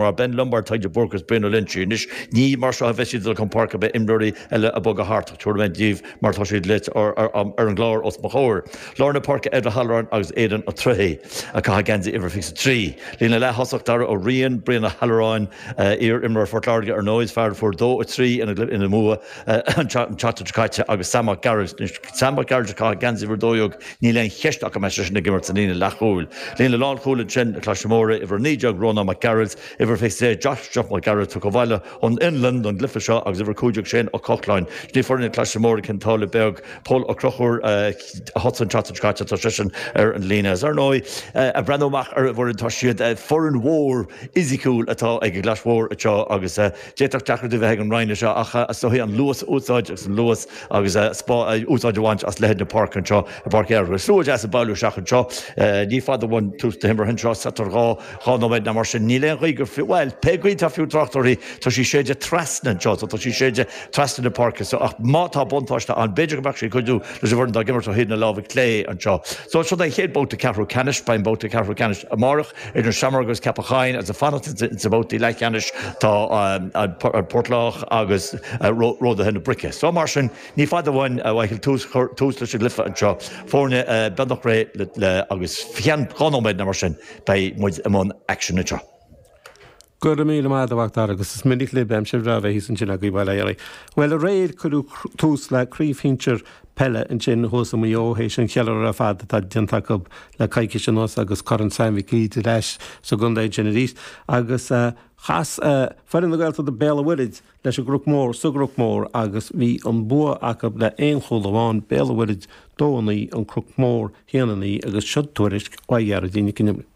Mar Ben Lombard, Tadhg de Búrca is Brian Ó Loinsigh anois, ní mar seo a bheas siad ag dul chun páirce. Beidh imreoirí eile ag bogadh thart, ach tabharfaidh mé daoibh mar tá siad ar an gclár os mo chomhair. Lár na páirce Ed O'Halloran agus Aidan Ó Troighthigh a chaithfidh geansaí uimhir 23. Líne leath-thosach Daire Ó Riain, Brian Ó Halloráin, iar-imreoir Phort Láirge ar ndóigh is fear a fuair 2 3 ina mbua, an tseachtain seo caite agus Sam Mac Gearailt. Anois, Sam Mac Gearailt ag caitheamh geansaí uimhir 12, níl aon cheist ach go mbeidh seisean ag imirt sa líne leathchúil. Líne lánchúil ansin, na Claise Móire, uimhir 19, Rónán Mac Gearailt, uimhir 23, Josh Jock Mac Gearailt, tagtha abhaile ón Fhionlainn don gcluife seo, agus uimhir 15, Shane Ó Cochláin. Sin í foireann na Claise Móire Cionn tSáile Beag, Pól Ó Crochúir, a thosaigh an tseachtain seo caite, tá seisean ar an líne. Is ar ndóigh, ag breathnú amach ar an bhfoireann, tá siad foireann mhór fhisiciúil atá ag an gClais Mhór anseo agus D'fhéadfadh deacracht a bheith ag an Rinn anseo ach is dóichí an luas a úsáid agus an luas agus úsáid a bhaint as leithead na páirce anseo i bPáirc Uí Fhearchair. Is slua deas ag bailiú isteach anseo. Ní fada uainn tús na himeartha anseo, so thart ar dhá dhá nóiméad nó mar sin. Níl aon ghaoth gur fiú, bhuel, pé gaoth atá fiú trácht uirthi, tá sí ag séideadh trasna anseo, so tá sí ag séideadh trasna na páirce so ach má tá buntáiste ann, b'fhéidir go mbeadh sí ag cuidiú leis an bhfoireann atá ag imirt ó thaobh na láimhe clé anseo. So seo é an chéad babhta ceathrú ceannais, beidh an babhta ceathrú ceannais amárach. Idir sheamair agus Ceapach Choinn agus ag fanacht insa bhabhtaí leathcheannais tá an Port Lách agus Ródaithe na Brice. Só mar sin ní fada uainn a bheith ag cur tús leis an gcluiche anseo. Foirne beagnach réidh agus faoi cheann dhá nóiméad nó mar sin beidh muid i mbun aicsin anseo. Go raibh míle maith agat a Mhacdara agus is minic lib aimsir bhreá a bheith thíos ansin agaibh, bhuel, aye, aye. Bhuel, aréir cuireadh tús le craobh shinsear peile ansin thuas i Maigh Eo théis an cheiliúradh ar fad atá déanta acu le coicís anuas agus Corn Sam Mhic Uidhir ar ais sa gcontae ansin arís agus chas foireann na Gaeltachta Béal an Mhuirthid leis an gCroc Mór sa gCroc Mór agus bhí an bua acu le aon chúl amháin, Béal an Mhuirthid dó a naoi, An Croc Mór haon a naoi agus seo tuairisc ó Ghearoidín Nic an Iomaire.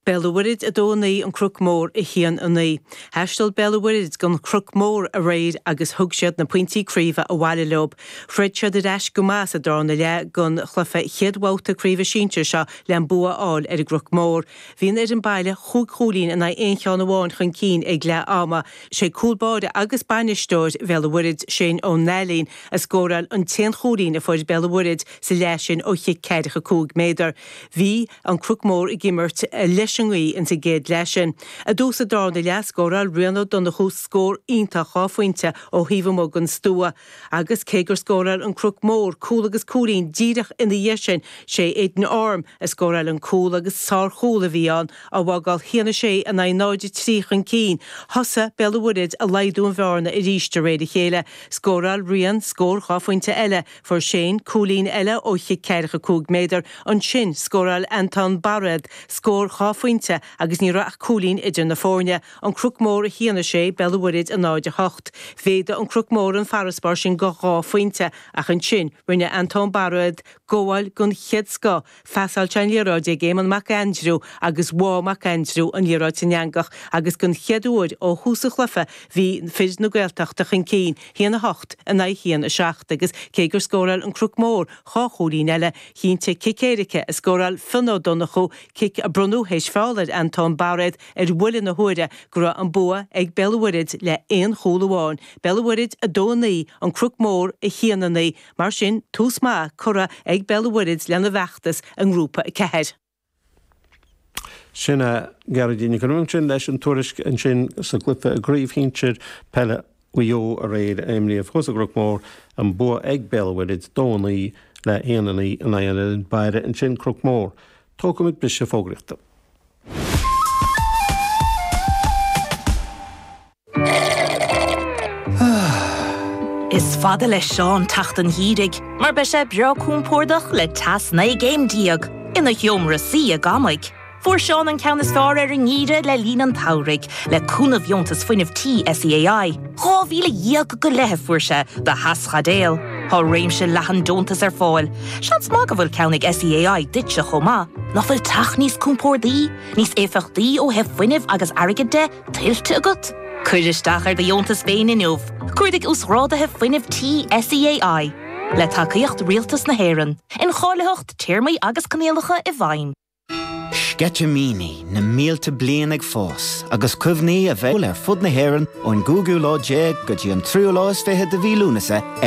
Béal an Mhuirthead 2 9 An Croc Mór 1 9 Thaistil Béal an Mhuirthead gon Chroc Mór aréir agus thug siad na pointí craoibhe abhaile leo. Throid siad ar ais go maith sa darna leath gon chluife chéad bhabhta craoibhe sinsear seo le an bua a fháil ar an gCroc Mór. Bhí an fhoireann baile chúig chúilín in aghaidh aon cheann amháin chun cinn ag leath ama. 'Sé cúl báire agus bainisteoir Bhéal an Mhuirthead, Shane Ó Nailín, a scóráil an t-aon chúilín a fuair Béal an Mhuirthead sa leath sin ó chic ceathracha cúig méadar. Bhí An Croc Mór ag imirt leis an ngaoith ins an gcéad leath sin. I dtús an darna leath scóráil Rian Ó Donnchú scór iontach dhá phointe ó thaobh amuigh den stua agus cé gur scóráil An Croc Mór cúl agus cúilín díreach ina dhiaidh sin sé Aidan Orme a scóráil an cúl agus sárchúl a bhí ann á bhfágáil 1 6 in aghaidh 0, 3 chun cinn. Thosaigh Béal an Mhuirthead ag laghdú an bhearna arís de réir a chéile. Scóráil Rian scór dhá phointe eile. Fuair Shane cúilín eile ó chic ceathracha cúig méadar, ansin scóráil Anton Bairéad scór dhá phointe agus ní raibh ach cúilín idir na foirne, an Cnoc Mór 1-6, Béal an Mhuirthead 0-8. Mhéadaigh an Cnoc Mór an farasbarr sin go dhá phointe ach ansin rinne Anton Bairéad gabháil den chéad scoth Phasáil sé an liathróid ag Éamonn Mac Aindriú agus bháigh Mac Aindriú an liathróid san eangach agus den chéad uair ó thús an chluife bhí fir na Gaeltachta chun cinn, 1 8 in aghaidh 1 7, agus cé gur scóráil An Cnoc Mór dhá chúilín eile, chinntigh cic éirice a scóráil Fionn Ó Donnchú, cic a bronnadh théis feall ar Anton Bairéad ar bhuille na huaire, go raibh an bua ag Béal an Mhuirthead le aon chúl amháin, Béal an Mhuirthead 2 9 An Cnoc Mór 1 9. Mar sin, tús maith curtha ag Béal an Mhuirthead lena bhfeachtas i nGrúpa 4. Sin é, Geraldine. Go raibh sin leis an tuairisc ansin sa gcluife i gCraobh Shinsir Peile Mhaigh Eo aréir a imríodh thuas sa gCnoc Mór an bua ag Béal an Mhuirthead 2 a 9 le 1 a 9 in aghaidh an fhoireann baile ansin Cnoc Mór. Tógfaimid briseadh fógraíochta. Is fada le Seán teacht an gheimhridh mar beidh sé breá compordach le teas 19 gcéim ina sheomra suí ag amaigh. Fuair Seán an ceann is fearr ar an ngeimhreadh le linn an tsamhraidh le cúnamh dheontas fuinnimh tí SEAI. Dhá mhíle dhéag go leith a fuair sé do theaschaidéil. Tá réimse leathan deontas ar fáil. Seans maith go bhfuil ceann ag SEAI duitse chomh maith. Nach bhfuil teach níos compordaí, níos éifeachtaí ó thaobh fuinnimh agus airgid de, tuillte agat? Cuir isteach ar do dheontas féin inniu. Cuardaigh Uasghrádaithe Fuinnimh Tí SEAI. Le tacaíocht Rialtas na hÉireann. Incháilitheacht, téarmaí agus coinníollacha i bhfeidhm. Sceitimíní na mílte bliain ag fás agus cuimhní a bheidh ar fud na hÉireann ón gcúigiú lá déag go dtí an tríú lá is fiche de mhí Lúnasa ar.